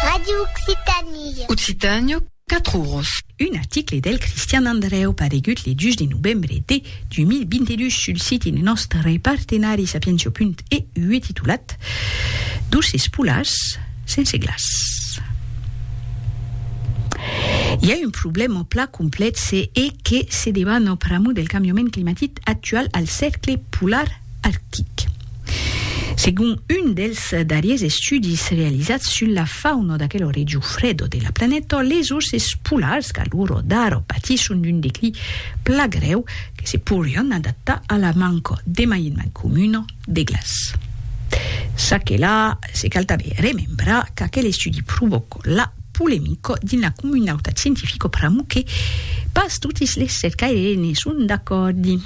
Radio Occitanie. Occitània, 4 oros. Un article del Cristian Andrèu paregut le 2 de novembre de 2022 sul siti de nòstre partenari Sapientia.eu e titulat Doces polars sense glaç. I a un problèma plan complexe e que se debana pr'amor del cambiament climatic actual al cercle polar arctic. Segon un dels darriers estudis realizats sus la fauna d'aquelo region freda de la planeta, les orses polars qu'a l'ora d'ara patisson d'un declin plan grèu que se pourrián adaptar a la manca demaiements comuna de glaç. Ça que la, se cal tanben remembrar qu'aquel estudi provòca la polemica dins la comunautat scientifica pr'amor que pas totis les cercaires ne son d'acòrdi.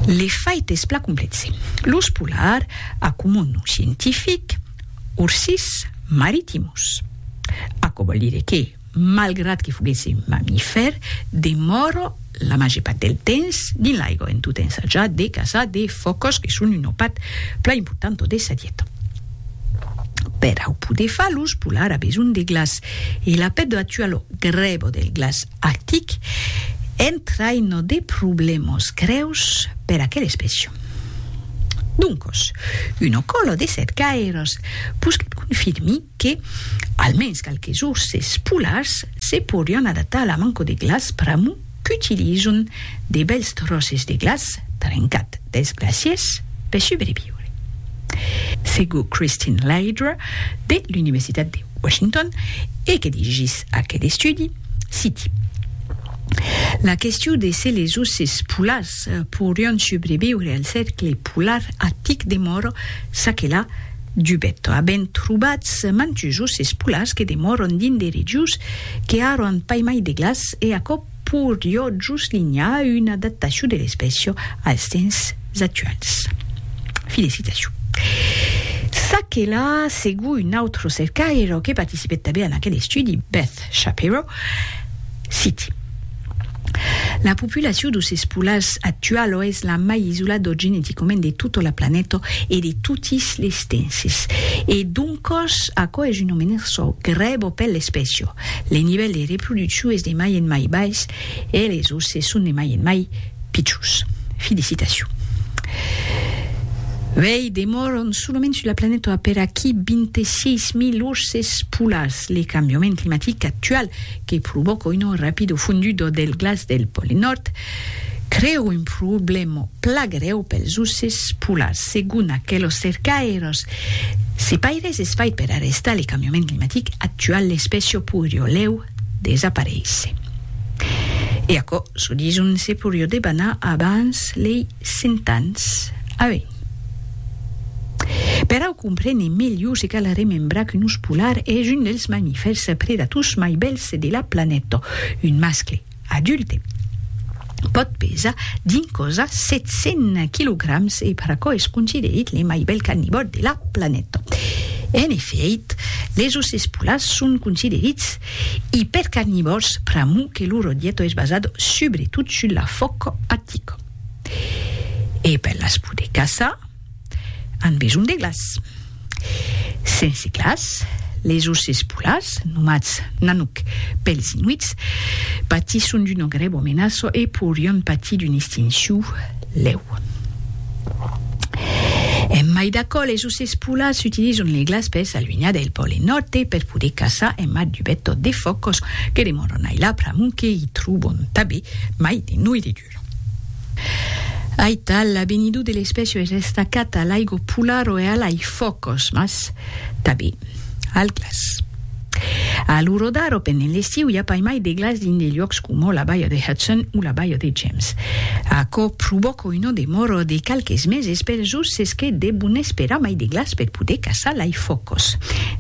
L'efait es plan complèxe. Los polar, a comon nom scientific, Ursus maritimus. Aquò vòl dire que, malgrat que foguèsse un mamifèr, demòra la màger part del temps dins l'aiga en tot ensajant de caçar de fòcas que son un opat plan important de sa dieta. Per au poder far los polar a besonh de glaç e la pèt doa tuar lo grèbo del glaç arctic entraina de problèmas grèus per aquel espècia. Doncos, una còla de cercaires posquèt confirmir que almens qualques orses polars se porián adaptar a la manca de glaç pr'amor qu'utilizon de bèls tròces de glaç trencat dels glacièrs per subreviure. Segur Christine Laidre, de l'Universitat de Washington, e que dirigís aquel estudi, citi, La question de se les oces polars pourrion subreviure al cercle polar artic demòra ça que la Dubèto, avent trobats mantusos es polars que demòron dins de regius que ara an pas mai de glaç e aquò porió juslinhar una adaptacion de l'espècia als temps actuals. Fi de citacion. Ça que la, segon un autre cercaire que participèt tanben en aquel estudi, Beth Shapiro, citi. La populacion dos espolars actualo es la mai isolado geneticament de tota la planeta e de totis les tenses. E doncos, aquò es una menerço grèvo per l'espècia. Le nivèl de reproduccion es de mai en mai bais e les osses son de mai en mai pichons. Felicitacion. Uèi, demòran solament sus la planeta aperaquí 26.000 osses polars. Le cambiament climatic actual, que provòca un rapido fondudo del glaç del pòle nòrd, crèu un problèma pla grèu pels oces polars, segon aquelos cercaires. Se paires es fait per arrestar le cambiament climatic actual, l'espècia poirió lèu desaparéisser. E aquò, çò dison, se poirió debanar abans lei Cent ans a uèi. Per au comprene melhor se cal remembrar qu'un ós polar es un dels mamifèrs predators mai bèls de la planeta. Un mascle adulte pòt pesar dins cosa 700 quilograms e per aquò es considerit le mai bèl carnivòr de la planeta. En efèit, les osses polars son considerits ipercarnivòrs pr'amor que lor dieta es basada subretot sus la fòca artica. E per las poder caçar, an besonh de glaç. Sense glaç, les osses polars, nomats Nanook pels Inuits, patisson d'una grèva menaça e pourrián patir d'una extincion lèu. En mai d'aquò, les osses polars s'utilizan le glaç per s'alunhar del Pòle Nòrd e per poder caçar en mar dubèt tot de fòcos que demòran ailà pr'amont que i tròban tanben mai de noirritura. Aital, l'abenidor de l'espècia es estacat a l'aigo polar o e a l'ai fòcos, mas tabé al glaç. A l'orodar o pendent l'estiu i a pas mai de glaç dins de luòcs coma la Baia de Hudson o la Baia de James. Aquò provòca una demora de qualques meses per jos es que devon esperar mai de glaç per poder caçar l'ai fòcos.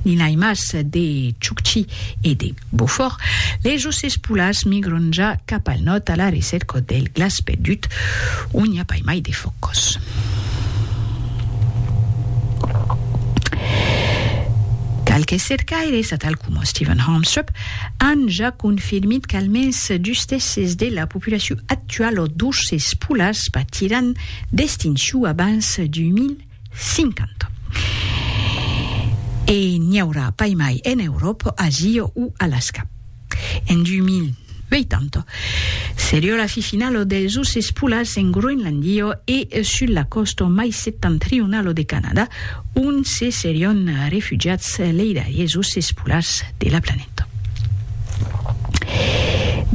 N'i ai mas de Chukchi e de. Beaufort, les ossets polars migron ja cap al nòrd a la recèrca del glaç perdut, ont i a pas mai de fòcos. Qualques cercaires, atal coma Stephen Harmstrup, an ja confirmit qu'almens dus tèrces de la populacion actuala d'ossets polars patiràn d'extincion abans 2000. 50. E n'i aurà pas mai en Euròpa, Asia o Alasca. En 2080, seriá la fi finala dels urses polars en Groenlàndia e sus la còsta mai septentrionala de Canadà, ont se serián refugiats lei darriers urses polars de la planeta. Nòrd.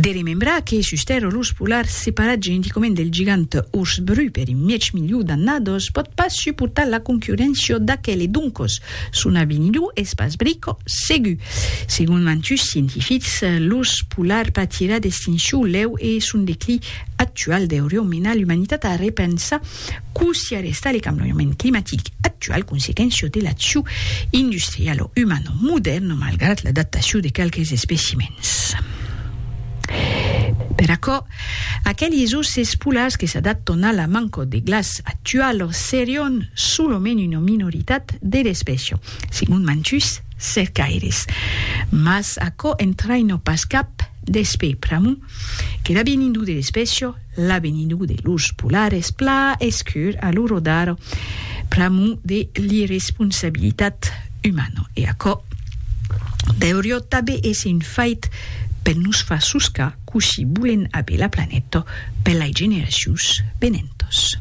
De remembrar que sus Tèrra l'urs polar, separat geneticament del gigant urs bru per un mièg miliu d'annadas, pòt pas suportar la concurréncia d'aquel e doncas son avenidur es pas brica segur. Segon mantuts scientifics, l'urs polar patirà d'extincion lèu e son declin actual deuriá menar l'umanitat a repensar Cossí arrestar le cambiament climatic actual consequéncia de l'acciu industrial o umano modèrn malgrat l'adaptaciu de qualques especimèns. Per aquò, aqueles oces polars que s'adaptan a la manca de glaç actuala serián solament una minoritat de l'espècia, segon mantuns cercaires. Mas aquò entraina pas cap despè pr'amor que l'avinidor de l'espècia L'avenindu de los polares pla escur a lo rodar pr'amor de l'irresponsabilitat umana. E aquò deurió tabé èsser un fait per nos far soscar cossí bolen aver la planeta per lai generacions venentas.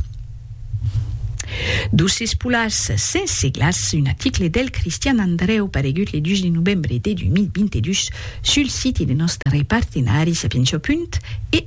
D'osses polars sense glaç, un aticle del Cristian Andrèu paregut le 2 de novembre de 2022 sul siti de nòstre partenari Sapientia. Punt e.